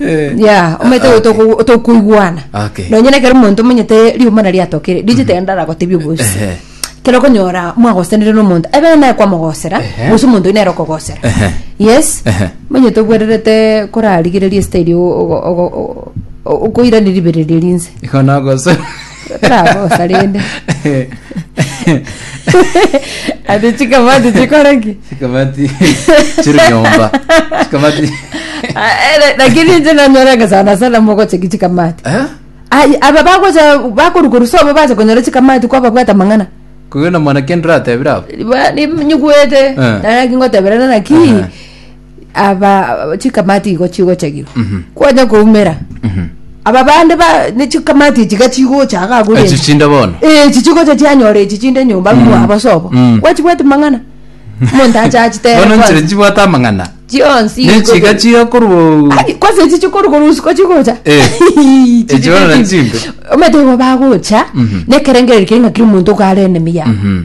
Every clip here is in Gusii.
Eh, ya omanyete ah, goita okay. otokoigwana Okay. nonye nekero omonto omanyete riuma na riatokire rijitenda aragotebia obosi Ehe. kero okonyora mwagosenire n'omonto ebe naye kwamogosera Ehe. gose omonto oyo nere okogosera Ehe. yes Ehe. manyete obwererete korarigereria esiteri okoirani ribereria rinse Igo nagosera. Rabosa rende. Ati chikamati chikore ki? Chikamati chiri nyomba. Chikamati. Ah, eh, Lakini inche nanyoranga sana sana mogocha ki chikamati. Eh? Ai, aba bagocha bakoruka rusobo bacha konyora chikamati kwa babwata mang'ana. Kogenda mwana kendra atebira abo. Ba- ni- Nyigwete. Eh. Naki ngoteberana naki. Aha. aba chikamati igo chigochagirwa kwanya koumera aba bande ba ne chikamati echi ga chigocha iga agure Echi chinde bono. Eh, echi chigocha chianyora echi chinde nyomba ng'wa abasobo Mm. gwachibwati mang'ana omonto acha achitere Bono nchire kwanza. chibwate amang'ana. chionsi Ne igo chiga bo- chiga korwa Ai, kwanza echi chikoro korwa usiku chigocha Eh. Echi Echi bono chinde na chinde. chimbe. omanyete igo bagocha nekerengereri kere ng'a kera omonto iga are enemy yabo Mhm.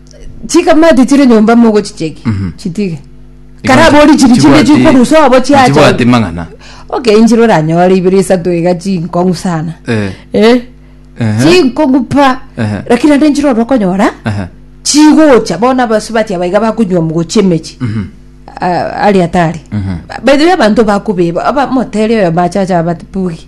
chikamati chire nyomba mogochicheki chitige karabori chiri chinde chikorusa obo chiacha chibwate mang'ana okenchire oranyore ibere isato iga chinkong'u sana Eh, eh ehe, chinkong'u pa Ehe. lakini ande nchire oro okonyora ehe. chigocha bono abasubati abaiga bakonywa mogocha emechi Ah, ari atari by the way abanto bakobeba abamotere oyo machacha abati bugi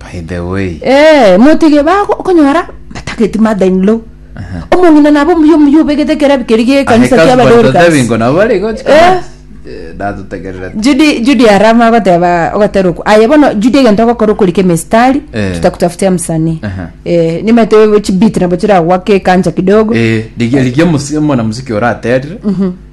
By the way. Eh, motige bago okonyora batageti mother in law. Omong'ina nabo omuya omuya obegete ekerebi keri gie ekanisa kia Ahekazi Dorcas. Batatebingo nabo bari gochi Eh. kama. Eh, Datutegerere. Judy Judy arama agoteba ogotera oku. Aye bono Judy egento ogokora okorika emistari Eh. tutakutafutia msanii. Aha. Eh, nimete chibeat nabo chiragwake kanja kidogo. Eh, rigia rigia musi- omwana musiki oraterire.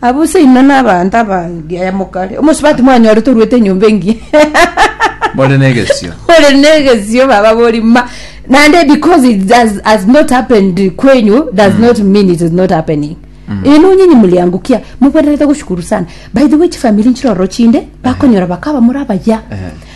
Abwo seino nabaanto abange. Yaya mokare. Omosubati mwanyorete oruete enyomba engiya. More negesio. More negesio baba bori ma. Nande because it does, has not happened kwenyu does mm. not mean it is not happening. Mm. Eno nyinyi muliangukia mubwererete gushukuru sana. By the way chifamili nchiroro chinde bakonyora bakaba muri abaya. Uh eh. -huh.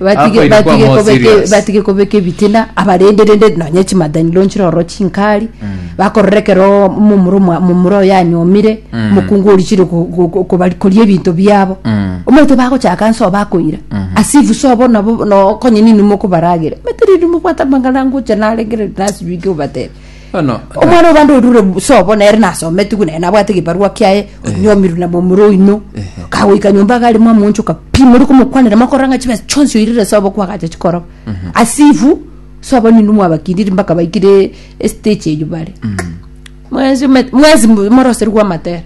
Batige Akoire kwa batige more kobeke serious. batige kobeka ebitina abarende rende nonye chimadaniro nchire oro chinkari bakorora ekero momura omwa- momura oyo anyomire mokungu oria chire ko- ko- ko- kobari- koria ebinto biabo Mm. omanyete bagochaka nso bakoira as if so bono nabo no- konye ninwe mokobaragera omanyete riria mobwate amang'ana ngocha narengere nasibike obatebe Bono Omwana o bande orure sobo nere nasometigwe nere nabwate egebarua kiaye onyomirwe na momura oino kagoika nyomba iga arimo amonchoka pi mori komokwanera mokorora ng'a chibesa chionsi oirire sobo kwagacha chikoroba asifu sobo nigo mwabakiriri mpaka baikire estage eyio bare mwensi ome- mwensi moroserigwe amatera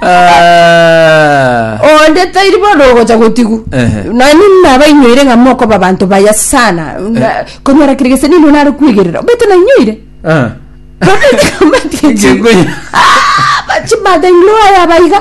Ah. onde tairi bono ogocha gotigu Ehe. nani nabainyoire ng'a mokoba abanto baya sana Na- konyora kere gese nino nare kwegerera obeto nainyoire Ah. Kegwe. chimada inlo aya abaiga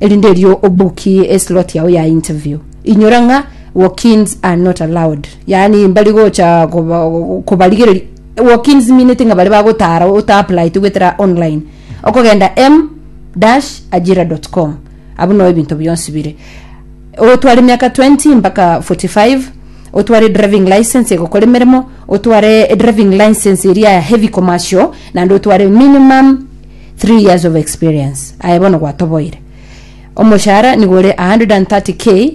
Erinde erio obukie eslot yao ya interview. Inyora ng'a walk-ins are not allowed. Yaani mbari gocha koba- kobarigereria. Walk-ins minete ng'a bare bagotara otaaplaete gwetera online. Okogenda m-ajira.com. Abwo no ebinto bionsi bire. Otware emiaka 20 mpaka 45, otware driving license egokora emeremo, otware driving license eria ya heavy commercial, naende otware minimum Three years of experience aye bono gwatoboire. Omoshara nigo ore 130k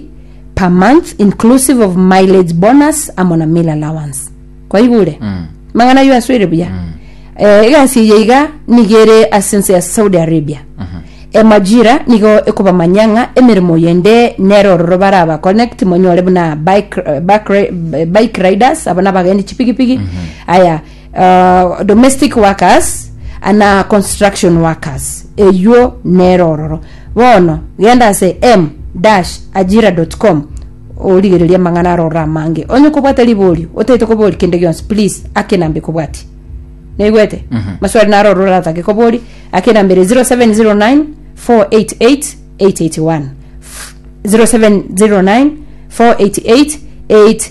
per month inclusive of mileage bonus amo na meal allowance. Kwaigure? Mm. Mang'ana ayio asoire buya. Mm. Eh, egasi eye iga nigo ere ase ense ya Saudi Arabia. Mm -hmm. Emajira nigo ekobamanya ng'a emeremo yende nere ororo baraba connect monyore buna bike, eh, bike, eh, bike riders abana bagendi chipigipigi. Mm -hmm. Aya uh, domestic workers ana construction workers eywo nero ororo bono genda ase m dash ajira.com origereria amang'ana aro orora amange onye kobwata riborio otaete kobori kende gionsi please akenambe kobwati naigwete mm-hmm. maswali naro orora atake kobori akenambere 0709 488 881 0709 488 8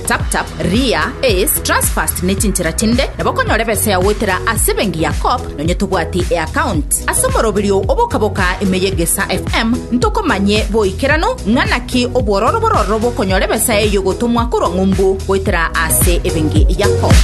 TapTap, Ria, Ace, Transfast ne chinchera chinde nabo okonyora ebesa yao goetera ase ebenki ya Co-op nonya tobwati eaccount. Ase omoroberio oo bokaboka ime ye Gesa FM, ntokomanye boikeranu ng'a naki obwororo bororo bw'okonyora ebesa eyio egotomwa korwa ng'umbu goetera ase ebenki ya Co-op.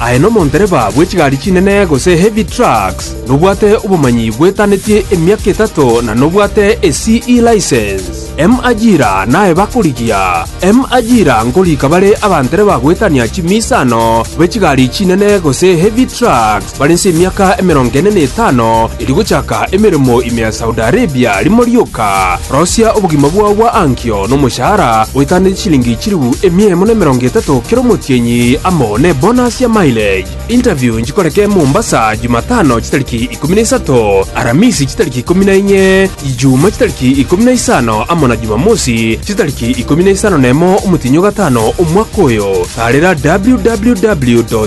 Aye nomondereba bwe chigari chinene gose heavy trucks, nobwate obomanyi bwetanetie emiaka etato na nobwate e CE license. M ajira naye bakorigia. M ajira nkorika bare abandereba goetania chimiisano bwe chigari chinene gose heavy trucks. Bare inse emiaka emerongo ene na etano erio gochaka emeremo ime ya Saudi Arabia, rimo rioka rosia obogima bwao bwa ankio nomoshahara oetaneti chilingi chilifu emia emo na emerongo etato kera omotienyi amo nebonus ya mileage. Interview nchikoreke Mombasa Jumatano chitariki ikomi na isato, Aramisi chitariki ikomi na inye, Ijumaa chitariki ikomi na isano amo na Jumamosi chitariki ikomi na isano nemo omotienyi ogatano omwaka oyo. Taarera www.